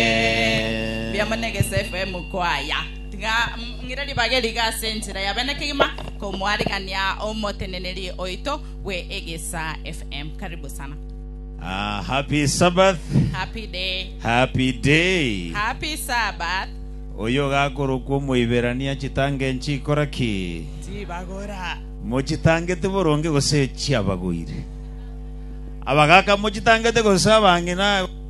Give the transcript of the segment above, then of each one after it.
Mbuya mono egeso FM kwaya. Tiga mm, ng'ire ribaga eriga ase enchera ya bene kegima komoarigania omoteneneri oito bwe egesa FM. Karibu sana. Ah, happy Sabbath, Happy day. happy day. Happy Sabbath. Oyo gakorokwa omoiberania chitange nchikora ki? Tibagora. Mochitangete boronge gose chiabagoire? Abagaka mochitangete gose abang'ina?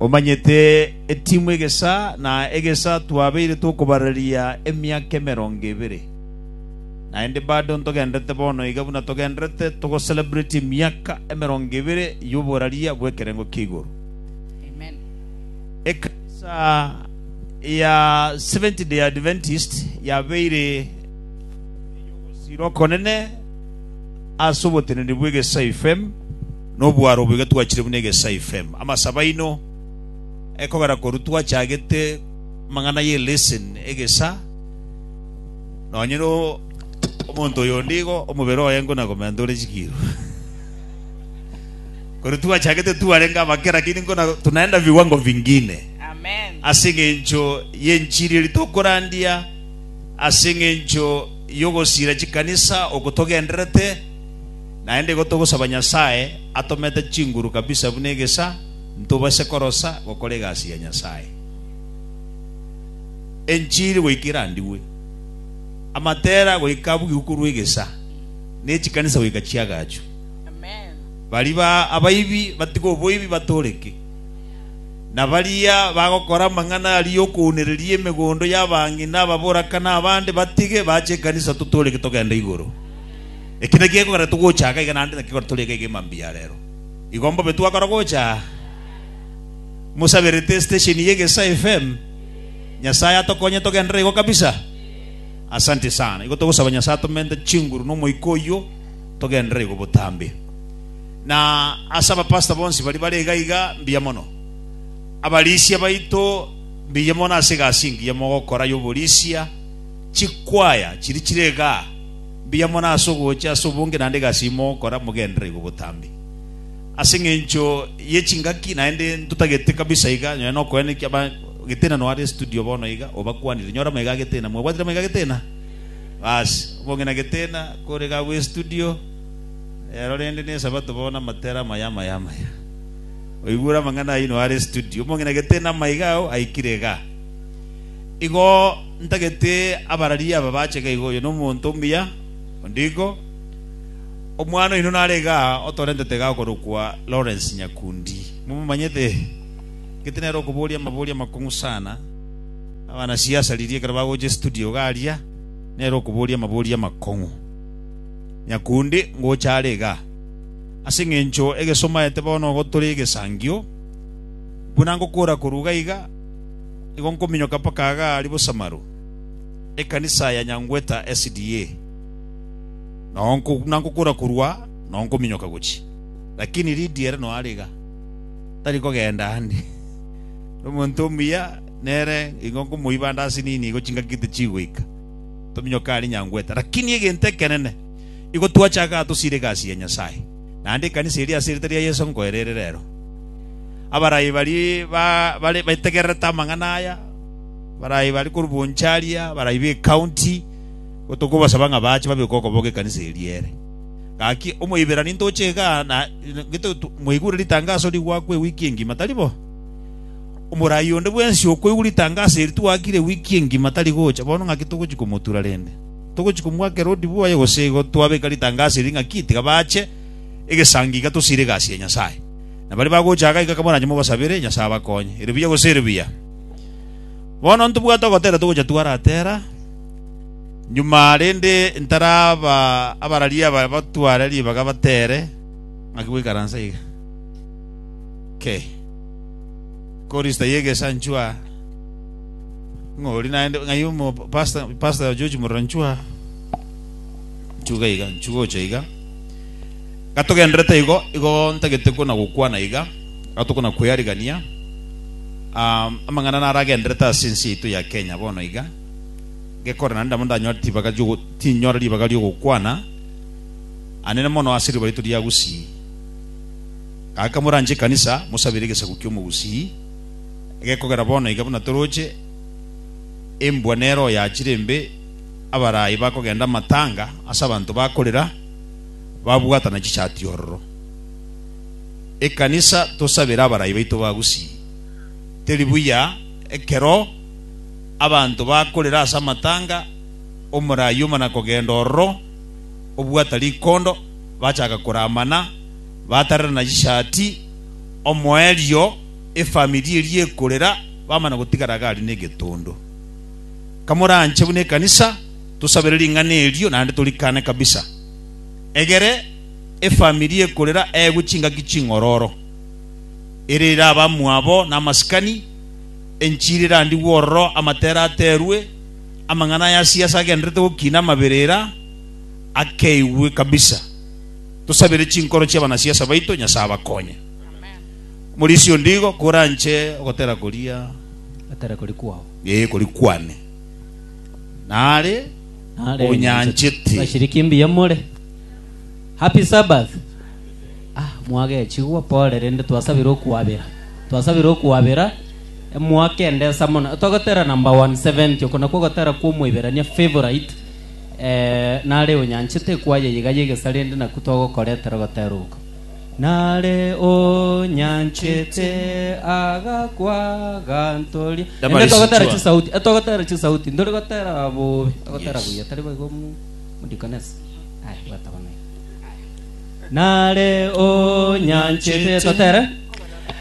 Omanyete etimu egesa na egesa twabeire tokobararia emiaka emerongo ebere, naende bado ntogenderete bono iga buna togenderete togocelebrate emiaka emerongo ebere y'oboraria bw'ekerengo kia igoro. Ekanisa ya Seventh-day Adventist yabeire ey'ogosiira okonene ase oboteneni bw'egesaifm. Nobwaro obo iga twachire buna egesai fem. Amasabo aino ekogera korwa twachagete amang'ana ye lesson egesa nonye no omonto oyo onde igo omobere oye ngo na gomenta ore chikiro. Korwa twachagete twarenge abake lakini ngo na tunaenda viwango vingine. Amen. Ase eng'encho ye enchiri eri tokorandia ase eng'encho yogosira chikanisa oko togendererete. Naende igo togosaba Nyasae atomete chinguru kabisa buna egesa, ntobase korosa gokora egasi ya Nyasae. Enchiri goika erandigwe, amatera goika abugigwe korwa egesa, ne chikanisa goika chiagachwe. Baria abaibi batige oboibi batooreke, na baria bagokora amang'ana aria okounereria emegondo y'abang'ina ababorakani abande batige bache ekanisa totooreke togende igoro. Eki nakio gekogera togocha aa gaiga naende nakio tori ege egima mbuya aa rero. Igo mbobe twakora gocha aa mosaberete station ye Gesa FM. Nyasaye atokonye togenderere igo kabisa. Asanti sana. Igo togosaba Nyasaye atomente chinguru na omoika oyio togenderere igo botambe. Na ase aba pastor bonsi baria bare iga iga mbuya mono. Abarisia baito mbuya mono ase egasi engiya mogokora y'oborisia. Chikwaya chiria chire igaa. Mbuya mono ase ogocha ase obonge naende egasi imo gokora, mogenderere igo botambe. Ase engencho ye chingaki naende ntotagete kabisa iga, nonye nokoenekia ba Getena no are studio bono iga, obakwanire, nyora maiga a Getena. Mwabwatire maiga a Getena? Basi, obonge na Getena, kore iga agwo estudio, rero rende ne Esabato bono amatera amaya amaya amaya. Oigure amang'ana ayio no are estudio. Obonge na Getena maiga ao aikire igaa. Igo ntagete abarari aba bacheke iga oyo nomonto omuya, onde igo. Omwana oino narenge aa otorentete iga okorokwa Lawrence Nyakundi. Momomanyete? Gete nere okoboria amaboria amakong'u sana. Abanasiasa riria ekero bagocha estudio iga aria, nere okoboria amaboria amakong'u. Nyakundi ngocha are iga. Ase eng'encho egesomaete bono ogotore egesangio, buna ngokora korwa iga iga, nigo nkominyoka mpaka agaaria bosamaru ekanisa ya nyangweta SDA, na nkokora korwa nao nkominyoka gochia. Lakini Lidia ere noare iga, tari kogenda ande. Ere omonto omuya, nere nigo nkomoiba ande ase nini igo chingaki tichigoika, tominyoke aria nyangweta. Lakini egento ekenene, igo twache agatosira egasi ya Nyasae. naende ekanisa eria ase erieta ria Yeso nkoe rere rero. Abarai baria bare bategererete amang'ana aya, abarai bare korwa Bonchari, abarai b'ecounty, tokobasaba ng'a baache babeke okoboko ekanisa eria ere. Gaki Omoiberania ntoche iga na gete mwaigure ritangaso rigwakwa ewiki engima, tari bo? Omorai onde bwensi okoigwa ritangaso eri twakire ewiki engima tari gocha, bono ng'aki togochia komotura rende? Togochia komwaka Herode bwoye gose igo twabeka ritangaso eri ng'a ki? Tiga bache egesangi iga tosiire egasi ya Nyasae. Na baria bagocha iga iga kamorache mogosabere Nyasae abakonye. Ere buya gose ere buya? Bono ntobwate ogotera togocha twaratera nyuma rende ntaraba abarari aba batware ribaga batere ng'aki goikaransa iga. Kei. Korista y'egesanchwa. Ng'a ori naende, ng'a aye omo pasta, pasta ya George Moranchua. Nchuga iga, nchuga ocha iga. Gatogenderete igo, igo ntagete kona gokwana iga, gatokona kwearigania. Um, amang'ana naragenderete ase ensi yaito ya Kenya bono iga. Gekore naende nabo ndanyore tibaga riogo, tinyore ribaga riogokwana. Anene mono ase riba rito ria Gusii. Gaka moranche ekanisa, mosabere egesaku ki'omogusii. Gekogera bono iga buna toroche, embwa nero oyachire embe, abaraai bakogenda amatanga ase abanto bakorera, babwatana chichati ororo. Ekanisa tosabere abaraai baito ba Gusii. Teri buya ekero abanto bakorera ase amatanga, omoraai omana kogenda ororo, obwata rikondo, bachaka koramana, batarerana chichati, omoerio, efamiri eria ekorera, bamana gotigara iga aria negetondo. Kamoranche buna ekanisa, tosabere ring'ana erio naende torikane kabisa. Egere efamiri ekorera eegwe chingaki ching'ororo, ere ere abamwabo na amasikani, enchiri erandigwe ororo, amatera aterwe, amang'ana aya ase ase agendererete gokina amaberera akeigwe kabisa. Tosabere chinkoro chi'abanasiasa baito Nyasae abakonye. Omorisia ondigo koranche ogotera koria. Atera koria kwao. Ee, koria kwane. Nare onyanchete. Bashiriki mbuya more. Happy Sabbath. Ah, mwagechigwa, pole, rende twasabire okwabera. Twasabire okwabera emwaka ende ensa mono. Togotera number 170, oko nakwo ogotera kwa Omoiberania, favorite. Eh, nare onyanchete ekwaya eye iga y'egesare ende nakwo togokoretera ogotera oko. Nare onyanchete agakwa agantoria. Ende togotera chisauti, e togotera chisauti, ndori gotera bobe, togotera buya, tari boigo mu mudikonesa. Aya, bwata bono. Nare onyanchete, totere.